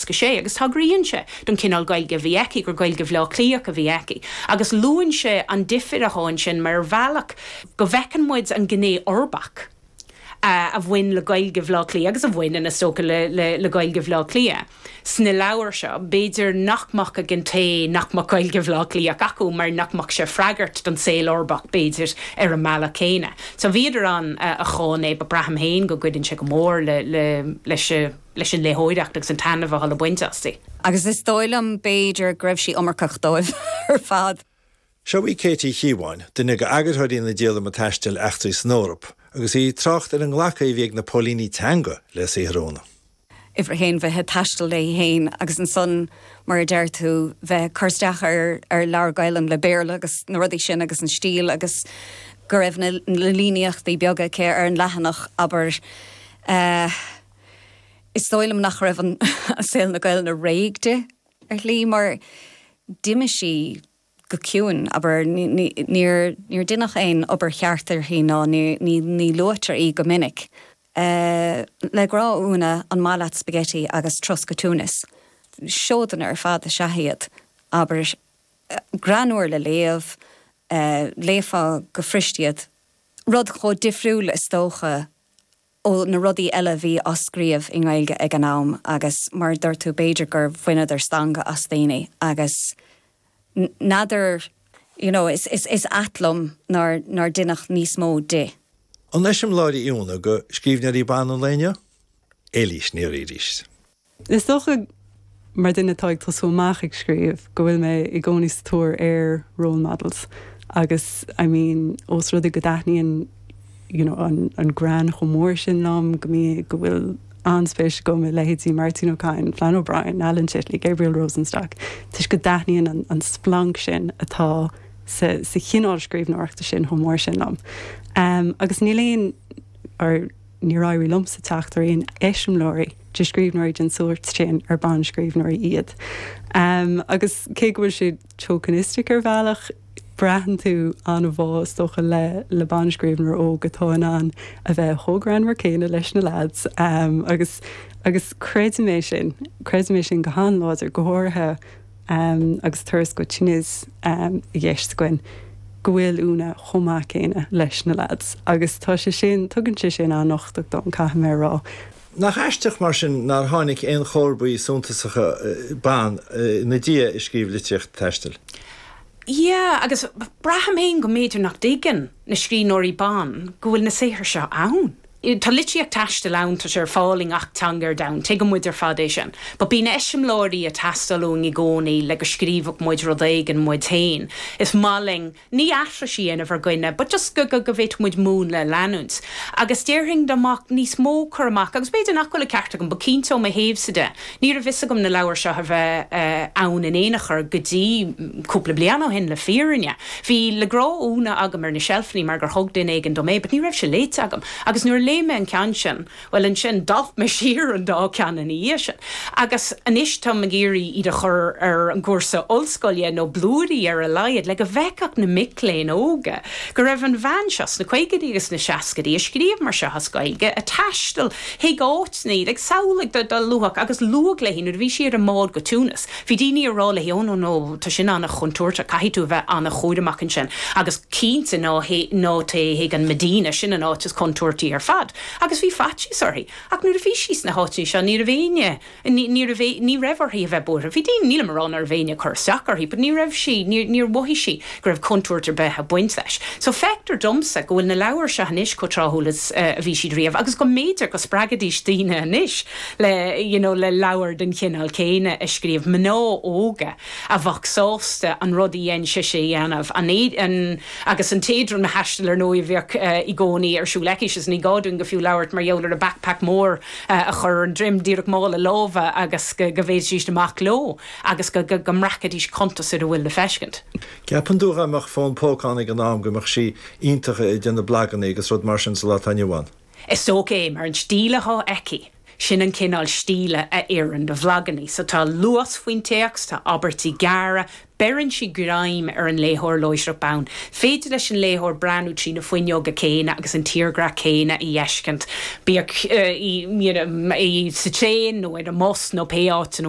Mheasca sé agus tagraíonn sé don chineál Gaeilge a bhí aici, gur Gaeilge Bhaile Átha Cliathach a bhí aici, agus luann sé an difir atá ansin mar bhealach go bhfeiceann muid an ghné uirbeach a bhain le Gaeilge Bhaile Átha Cliath agus a bhaineann, is dócha, le Gaeilge Bhaile Átha Cliath sna leabhair seo. B'fhéidir nach mbeadh ag an té nach mbeadh Gaeilge Bhaile Átha Cliathach acu mar nach mbeadh sé ag freagairt don saol uirbeach, b'fhéidir, ar an mbealach céanna. So bhíodar ann a cháin é but braithim féin go gcuireann sé go mór leis an. leis an léitheoireacht agus an taitneamh atá le baint astu. Agus is dóigh liom, b'fhéidir, go raibh sí iomarcach dóibh ar fad. Seo í Kate Uí Chíobháin, duine d'eagarthóirí na díolama taistil Eachtraí san Eoraip, agus í ag trácht ar an nglacadh a bhí ag na póilíní teanga le saothar Úna. uimhir a haon, bheith ag taisteal léi féin agus ansan, mar a deir tú, bheith ag cur isteach ar leabhar Gaelainne le Béarla agus na rudaí sin agus an stíl agus go raibh na líníochtaí beaga aici ar an leathanach, abair. Is dóigh liom nach raibh an saol na Gaelainne réidh di, ar shlí, mar d'imigh sí go ciúin, abair. Níor deineadh aon obair cheart uirthi ná ní luaitear í go minic. Le Grá ó Úna, An Maith Leat Spaigití agus Turas go Túinis? Seodanna ar fad is ea iad, abair. Greannmhar le léamh, léifeá go fuirist iad. Rud chomh difriúil, is dócha, ó na rudaí eile a bhí á scríobh i nGaeilge ag an am agus mar a dúirt tú, b'fhéidir gur bhaineadar stangadh as daoine agus n'fheadar, you know, is ait liom nár deineadh níos mó di. An eiseamláir í Úna do scríbhneoirí ban an lae inniu? Éilís Ní Riain. Is dócha, mar dhuine atá ag tosú amach ag scríobh, go bhfuil mé i gcónaí sa tóir ar role models agus I mean ós rud é go dtaitníonn you know an greann chomh mór sin liom, go mbíonn, go bhfuil an-spéis agam i leithéidí Máirtín Ó Cadhain, Flann O'Brien, Alan Titley, Gabriel Rosenstock toisc go dtaitníonn an an splanc sin atá sa sa chineál scríbhneoireachta sin chomh mór sin liom. Agus níl aon or, Níor éirigh liomsa teacht ar aon eiseamláirí de scríbhneoirí den sórt sin ar bhanscríbhneoirí iad. Agus cé go bhfuil sé tokenistic ar bhealach, braitheann tú an-bhá, is dócha, le banscríbhneoir óg atá in ann a bheith chomh greannmhar céanna leis na lads agus creidim é sin, creidim é sin go han-láidir, go háirithe ann agus Turas go Túinis i gceist againn, go bhfuil Úna chomh maith céanna leis na lads agus tá sé sin, tugann sé sin an-uchtach dom, caithfidh mé a rá. Nach aisteach, mar sin, nár tháinig aon chomharbaí suntasacha ban ina diaidh a scríobh litríocht taistil? Yeah, agus braithim féin go mb'fhéidir nach dtuigeann na scríbhneoirí ban go bhfuil na saothair seo ann. i. Tá litríocht taistil ann, tá sé ar fáil i ngach teanga ar domhan, tuigeann muid ar fad é sin. But bíonn eiseamláirí ag teastáil uainn i gcónaí le go scríobhfadh muid rud éigin muid féin. Is maith linn, ní aithris a dhéanamh ar dhuine, but just go, go, go bhféadfadh muid múnla a leanúint. Agus déarfainn dá mbeadh níos mó cur amach, agus b'fhéidir nach bhfuil an ceart agam, but cinnte ó mo thaobhsa de, Ní raibh fhios agam na leabhair seo a bheith ann in aon chor go dtí cúpla bliain ó shin, le fírinne. Bhí Le Grá ó Úna agam ar na seilfeanna mar gur thug duine éigin dom é, but ní raibh sé léite agam. Agus nuair a léigh mé an ceann sin, bhuel, ansin, d'alp mé siar an dá cheann ina dhiaidh sin. Agus anois, táim ag iarraidh iad a chur ar an gcúrsa ollscoile, nó blúirí ar a laghad, le go bhfeicfeadh na mic léinn óga go raibh an bhean seo, sna caogaidí agus sna seascaidí, a scríobh mar seo as Gaeilge, a thaistil Chuig áiteanna ag samhlaigh do do luath agus luadh léi nuair a bhí sí ar an mbád go Túinis. Bhí daoine ag rá léi, 'Ó no, no, tá sin an-chontúirteach, caithfidh tú a bheith an-chúramach ansin. Agus cinnte ná téigh chuig an Medina, sin an áit is contúirtí ar fad. Agus bhí faitíos uirthi. Ach nuair a bhí sí sna háiteanna seo, ní raibh éinne. Ní raibh, ní raibh uirthi a bheith buartha. Bhí daoine, nílim a rá ná raibh éinne ag cur isteach uirthi, but ní raibh sí, níor, níor mhothaigh sí go raibh contúirt ar bith ag baint leis. So feictear domsa go bhfuil na leabhair seo anois chomh tráthúil is a bhí siad riamh agus go mb'fhéidir go spreagfaidís daoine anois le, you know, le leabhair den chineál céanna a scríobh, mná óga a bheadh sásta an rud a dhein sise a dhéanamh, an, an, agus an t-éadromthaisteal, ar ndóigh, a bheadh i gcónaí ar siúl aici, is ní gá dúinn go fiú labhairt mar gheall ar a backpack mór, a chur ar an droim díreach mála láimhe agus go bhféadfaidís amach leo agus go mbreacfaidís cuntas ar a bhfuil le feiscint. An gceapann tú dhá mbeadh fón póca ann ag an am go mbeadh sí iontach ag déanamh blaganna agus rud mar sin sa lá atá inniu ann? Is dócha é mar an stíl atá aici, sin an cineál stíle a oireann do bhlaganna. So tá luas faoin téacs, tá abairtí gearra, beireann sí greim ar an léitheoir láithreach bonn. féidir leis an léitheoir breathnú trí na fuinneoga céanna agus an tírdhreach céanna a fheiscint, bíodh í sa traein nó ar an mbus nó pé áit ina